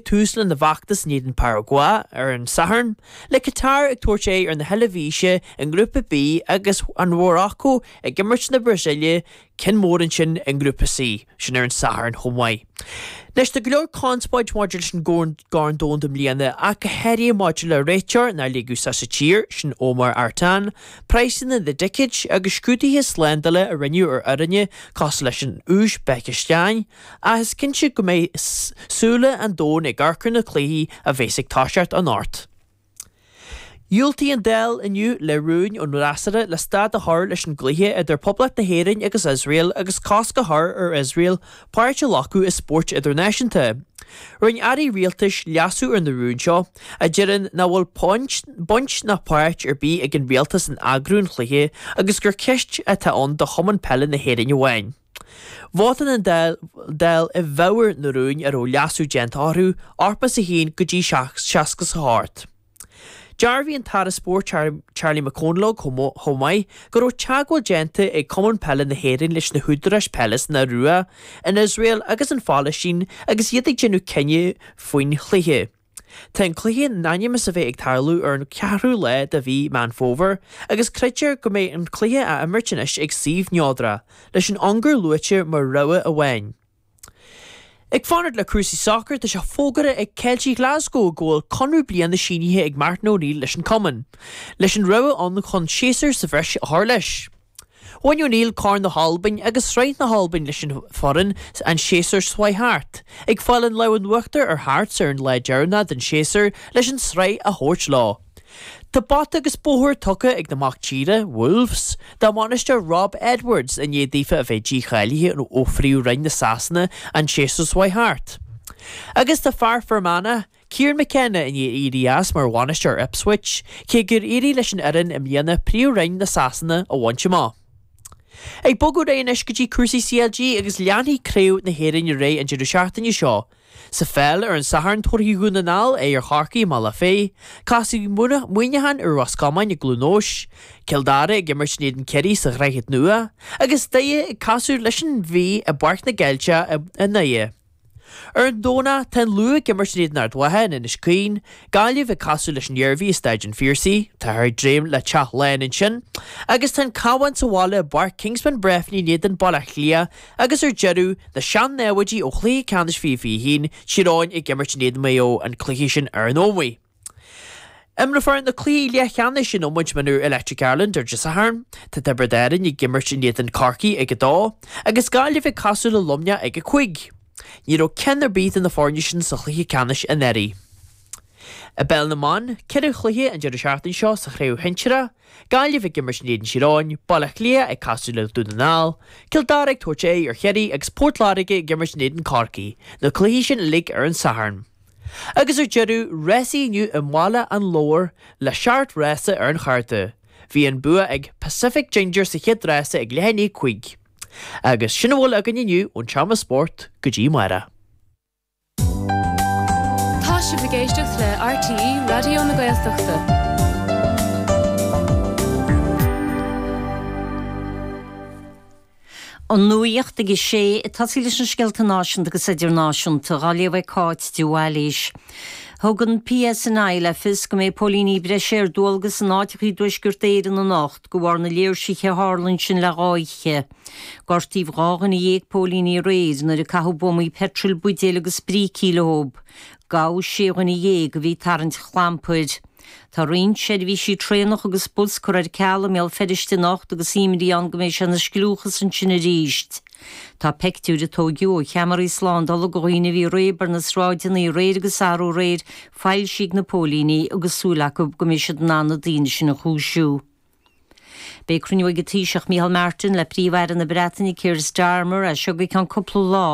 Tús lena bhfeachtas in éadan Paragua ar an Satharn, le Catar ag tabhairt aghaidh ar na hEilbhísigh i nGrúpa B agus an Mharacó ag imirt na Brasaíle ceann mór ansin i nGrúpa C, sin ar an Satharn chomh maith. Anois, tá go leor conspóid maidir leis an gCorn Domhanda i mbliana ach go háirithe maidir le réiteoir nár ligeadh sa sa tír, sin Omar Artan, praghsanna na dticéid agus scrúduithe slándála a rinneadh ar fhoirne cosúil leis an Úisbéiceastáin, Ach is cinnte go mbeidh súile an domhain ag amharc ar na cluichí a bheas ag toiseacht anocht. Dhiúltaigh an Dáil inniu le rúin ón bhfreasúra le stad a chur leis an gcluiche idir Poblacht na hÉireann agus Iosrael agus cosc a chur ar Iosrael páirt a ghlacadh i spóirt idirnáisiúnta. Rinne airí rialtais leasú ar na rúin seo, a deireann nach bhfuil baint ná páirt ar bith ag an rialtas in eagrú an chluiche agus gur ceist atá ann do Chumann Peile na hÉireann amháin. Vótáil an Dáil i bhfabhar na rúin a raibh leasú déanta orthu, 81 go dtí 68. Dhearbhaigh an tAire Spóirt Charlie McConalogue chomh maith go raibh teagmháil déanta ag Cumann Peile na hÉireann leis na húdaráis peile san Iorua, in Iosrael agus an Phalaistín agus iad ag déanamh cinneadh faoin chluiche. Tá an cluiche in ainm is a bheith ag tarlú ar an cheathrú lá de mhí Meán Fómhair agus creidtear go mbeidh an cluiche á imirt anois ag suíomh neodrach, leis an Ungáir luaite mar rogha amháin. Ag fanacht le cúrsaí sacair, tá sé fógartha ag Ceiltigh Ghlaschú go bhfuil conradh bliana sínithe ag Martin O'Neill leis an cumann, leis an rogha ann chun séasúr sa bhreis a chur leis. Bhain O'Neill Corn na hAlban agus Sraith na hAlban leis an bhfoireann an séasúr seo a chuaigh thart, ag fáil an lámh in uachtar ar Hearts ar an lá deireanach den séasúr leis an sraith a thabhairt leo. Tá bata agus bóthar tugtha ag na mac tíre, Wolves, dá mbainisteoir Rob Edwards i ndiaidh daofa a bheith dícháilithe ó Phríomh-Roinn na Sasana an séasúr seo a chuaigh thart. Agus tá fear Fhear Manach, Kieran McKenna i ndiaidh éirí as mar bhainisteoir Ipswich, cé gur éirigh leis an fhoireann i mbliana Príomhroinn na Sasana a bhaint amach. Ag bogadh ar aghaidh anois go dtí cúrsaí CLG agus leanfaidh Craobh na hÉireann ar aghaidh an deireadh seachtaine seo. Sa pheil, ar an Satharn tabharfaidh Dún na nGall aghaidh ar Chorcaigh i mBealach Féich, casfaidh Muineachán ar Ros Comáin i gCluain Eois, Cill Dara ag imirt in éadan Ciarraí sa Dhroichead Nua agus Doire ag casadh leis an Mhí i bPáirc na gCeilteach i nDoire. Ar an Domhnach, tá an Lú ag imirt in éadan Ard Mhacha in Inis Caoin, Gaillimh ag casadh leis an Iarmhí i Staid an Phiarsaigh, táthar ag dréim le teach lán ansin, agus tá an Cabhán sa bhaile i bPáirc Kingspan Breffni in éadan Baile Átha Cliath, agus ar deireadh, na sean-namhaidí ó chluiche ceannais 2021, Tír Eoghain ag imirt in éadan Maigh Eo an cluiche sin ar an Ómaigh. Imreofar na cluichí leathcheannais in iomáint mionúr Electric Ireland Dé Sathairn. Tá Tiobraid Árainn ag imirt in éadan Corcaí ag a dó, agus Gaillimh ag casadh le Luimneach ag a cúig. Ní raibh ceann ar bith de na foirne sin sa chluiche ceannais anuraidh. I bpeil na mban, ceithre chluiche an deireadh seachtaine seo sa chraobh shinsir, Gaillimh ag imirt in éadan Thír Eoghain, Baile Átha Cliath ag casadh le Dún na nGall, Cill Dara ag tabhairt aghaidh ar Chiarraí agus Port Láirge ag imirt in éadan Corcaí, na cluichí sin uilig ar an Satharn. Agus ar deireadh, rásaí inniu i mBaile an Lobhair le seacht rása ar an chárta. Bhí an bua ag Pacific Ginger sa chéad rása ag leath i ndiaidh a cúig. Agus sin a bhfuil againn inniu ón Seomra Spóirt, go dtí amárach. Tá sibh ag éisteacht le RTÉ Raidió na Gaeltachta. An nuacht ag a sé, ag tosaí leis na scéalta náisiúnta agus idirnáisiúnta, á léamh ag Cáit de Bhailís. Thug an PSNI le fios go mbeidh póilíní breise ar dualgas in áiteacha i dTuaisceart Éireann anocht de bharr na léirsithe a tharla ansin le dhá oíche. Gortaíodh dhá dhuine dhéag póilín aréir nuair a caitheadh buamaí peitril, buidéil agus brící leo. Gabhadh sé dhuine dhéag a bhí ag tarraingt clampair. Tá roinnt seirbhísí traenach agus bus curtha ar ceal i mBéal Feirste anocht agus imní ann go mbeidh sé ina scliúchas ansin arís. Tá peictiúir a tóigeadh ó cheamaraí slándála de dhaoine a bhí ag réabadh ar na sráideanna aréir agus arú aréir foilsithe ag na póilíní agus súil acu go mbeidh siad in ann na daoine sin a chúisiú. Beidh cruinniú ag an Taoiseach Micheál Martin le Príomh-Aire na Breataine Keir Starmer as seo go ceann cúpla lá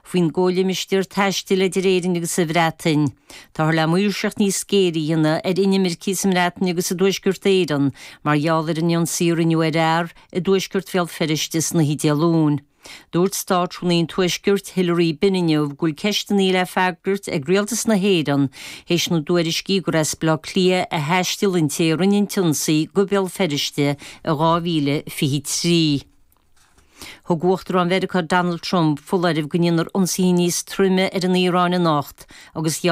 faoin gcomhlimistéar taistil idir Éirinn agus an Bhreatain. Táthar le maoirseacht níos géire a dhéanamh ar inimircigh sa mBreatain agus i dTuaisceart Éireann mar gheall ar an ionsaí a rinneadh ar fhear i dtuaisceart Bhéal Feirste san oíche Dé Luain. Dúirt Státrúnaí an Tuaiscirt, Hilary Benn inniu go bhfuil ceisteanna le freagairt ag Rialtas na hÉireann théis na dtuairiscí gur as Baile Átha Cliath a thaistil an té a rinne an t-ionsaí go Béal Feirste in 2023. Thug Uachtarán Mheiriceá Donald Trump foláireamh go ndéanfar ionsaithe níos troime ar an Iaráin anocht agus gheall